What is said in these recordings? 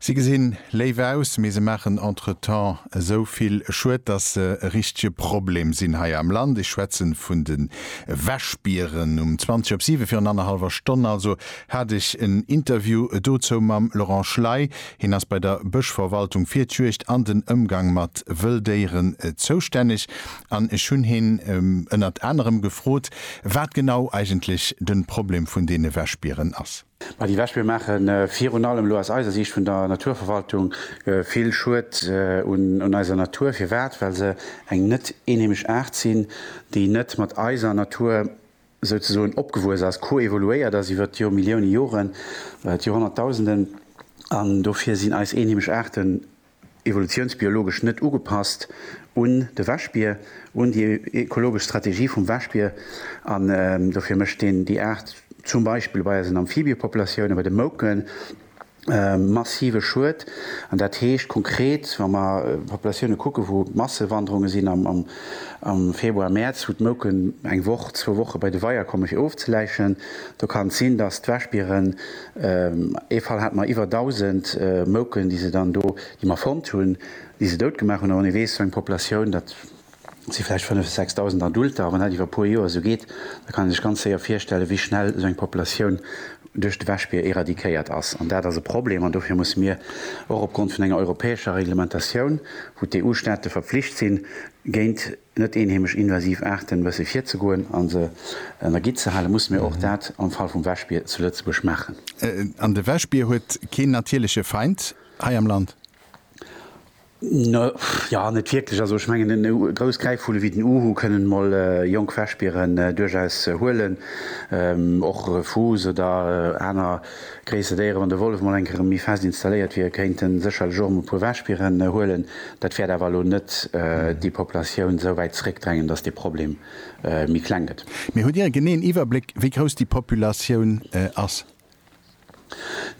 Si gesinn léif aus, mee se maachen entretemps esou vill Schued, dass se e richtege Problem sinn hei am Land. Ech schwätzen vun de Wäschbieren. Um 20 op 7, virun annerhallwer Stonn also, hat ech en Interview dozou mam Laurent Schley. Hien ass bei der Bëschverwaltung fir d'Juegd an den Ëmgang mat Wëlldéieren zoustänneg. An ech hunn hien ënnert anerem gefrot, wat genau eigentlech de Problem vun deene Wäschbieren ass. Mä déi Wäschbier maache virun allem elo aus eiser Siicht vun der Naturverwaltung vill Schued un eiser Natur. Firwat? Well se eng net eenheemesch Aart sinn, déi net mat eiser Natur souzesoen opgewuess ass, koevoluéiert ass iwwer d'Jormillioune Joren, d'Jorhonnertdausenden. An dofir sinn eis eenheemesch Aarten evolutiounsbiologesch net ugepasst un de Wäschbier, un déi ekologesch Strategie vum Wäschbier, an dofir mécht een déi Aart zum Beispill bei eisen Amphibiëpopulatiounen, bei de Mouken, massive Schued. An dat heescht konkret, wa mer Populatiounen kucken, wou Massewanderunge sinn am Februar, Mäerz, wou d'Mouken eng Woch, zwou Woche bei de Weier kommen, fir ofzeläichen, do kann et sinn, datt d'Wäschbieren, Ee Fall hate mer iwwer 1.000 Mouken, déi se dann do, déi mer fonnt hunn, déi se dout gemaach hunn. A wann ee weess, esou eng Populatioun, dat si vläicht 5 bis 6.000 Adulter, a wann dat iwwer e puer Joer esou geet, da kann een sech ganz séier virstellen, wéi schnell esou eng Populatioun duerch de Wäschbier eradikéiert ass. An dat ass e Problem. An dofir musse mir och opgrond vun enger europäescher Reglementatioun, wou d'EU-Staate verpflicht sinn, géint. net eenheemesch invasiv Aarten wësse virzegoen a se an der Gitt ze halen, musse mir och dat am Fall vum Wäschbier zu Lëtzebuerg maachen. An de Wäschbier huet keen natierleche Feind hei am Land? Jo, net wierklech. Also ech mengen, e grouss Gräifvulle wéi den Uhu kënnen mol jonk Wäschbieren duerchaus huelen. Och Fuuss oder aner. Gréisser Déiere, wann de Wollef mol eng Kéier erëm méi fest installéiert wier, kéint e sécherlech och erëm e puer Wäschbieren huelen. Dat wäert awer elo net déi Populatioun esou wäit zeréckdrängen, datt dee Problem méi kleng gëtt. Mee hutt Dir e geneeën Iwwerbléck, wéi grouss déi Populatioun ass?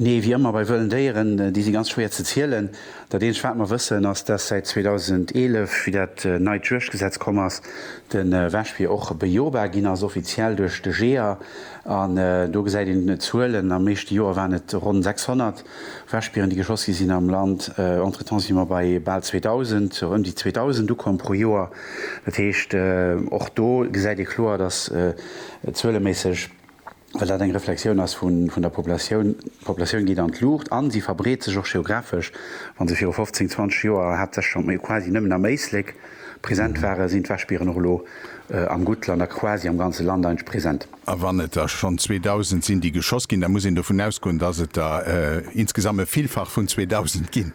Nee, wéi ëmmer bei wëllen Déieren, déi si ganz schwéier ze zielen. Dat eenzegt, wat mer wëssen, ass, datt säit 2011, wéi dat neit Juegdgesetz komm ass, de Wäschbier och bejobar ginn ass, offiziell duerch de Jeeër. An do gesäit een d'Zuelen, am meeschte Joer waren et ronn 600 Wäschbieren, déi geschoss gi sinn am Land. Entretemps si mer bei bal 2.000, ëm déi 2.000 Ukomm pro Joer. Dat heescht, och do gesäit ee kloer, datt zueleméisseg, well dat eng Reflexioun ass vun der Populatioun, d'Populatioun geet an d'Luucht a se verbreet sech och geografesch. Wa se viru 15, 20 Joer haaptsächlech, quasi nëmmen am Éislek, Present ware sinn d'Wäschbieren och elo am Guttland a quasi am ganze Land eintsch present. A wann et der schonn 2.000 sinn, déi geschoss ginn, da muss een dovun ausgoen, dass et der insgesamt e Villfach vun 2.000 ginn.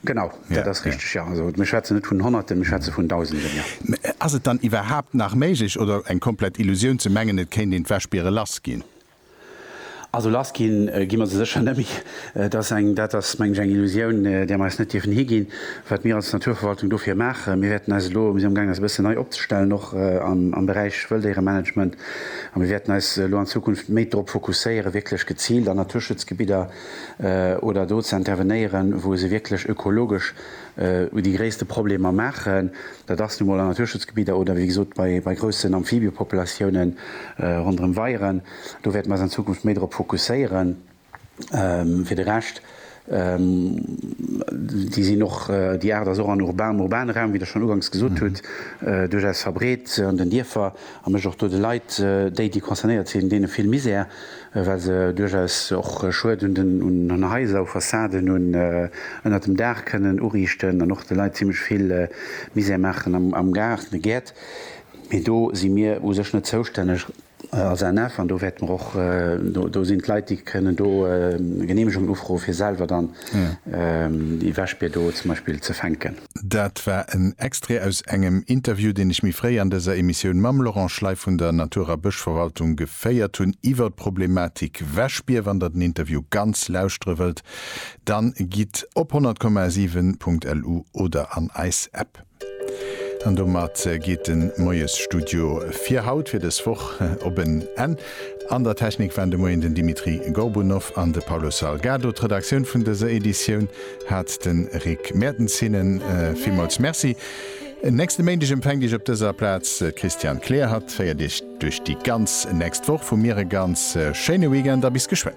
Genau, dat ass richteg, jo. Also mir schwätzen net vun Honnerten, mir schwätze vun Dausenden, jo. Mä ass et dann iwwerhaapt nach méiglech oder eng komplett Illusioun ze mengen, et kéint een d'Wäschbiere lass ginn? Also lass ginn gi mer se sécher nëmmi. Et ass eng, dat ass mengen ech eng Illusioun, där mer eis net dierfen higinn, wat mir als Naturverwaltung dofir maachen. Mir wäerten eis elo, mir sinn am gaang eis e bëssen nei opzestellen, och am Beräich Wëlldéieremanagement, a mir wäerten eis elo an Zukunft méi drop fokusséieren, wierklech geziilt an Naturschutzgebidder oder do ze intervenéieren, wou se wierklech ökologesch, u déi gréisste Problemer maachen. Dat ass nu mol an Naturschutzgebidder oder wéi gesot bei bei groussen Amphibiëpopulatiounen ronderëm Weieren. Do wäerte mer eis an Zukunft méi drop fokusséieren. Fir de Rescht, déi sinn och, déi Aart ass och an urbanem, urbanen Raum, wéi Der schonn uganks gesot hutt, duerchaus verbreet an den Dierfer. A mécht och do de Leit, déi, déi concernéiert sinn, deene vill Misär, well se duerchaus och Schued un den, un Haiser, u Fassaden, un ënnert dem Daach kënnen uriichten an och de Leit zimmlech vill Misär maachen am Gaart, an de Gäert. Mee do si mir u sech net zoustänneg als ANF an do wäerte mer och, do sinn d'Leit, déi kënnen do Geneemegungen ufroen, fir selwer dann déi Wäschbier do zum Beispill ze fänken. Dat war en Extrait aus engem Interview, deen ech méi fréi an dëser Emissioun mam Laurent Schley vun der Natur a Bëschverwaltung geféiert hunn iwwer d'Problematik Wäschbier. Wann der den Interview ganz lauschtere wëllt, dann gitt op 100,7.lu oder an eis App. An domat geet den Moiesstudio fir haut, fir dës Woch, op en Enn. An der Technik waren de Moien den Dimitri Gorbunov an de Paulo Salgado. D'Redaktioun vun dëser Editioun, hat de Rick Mertens hinnen villmools Merci. En nächste Méindeg empfänkt Iech op dëser Plaz d'Christiane Kleer. Hatt féiert Iech duerch déi ganz nächst Woch. Vu mir e ganz schéine Weekend a bis geschwënn.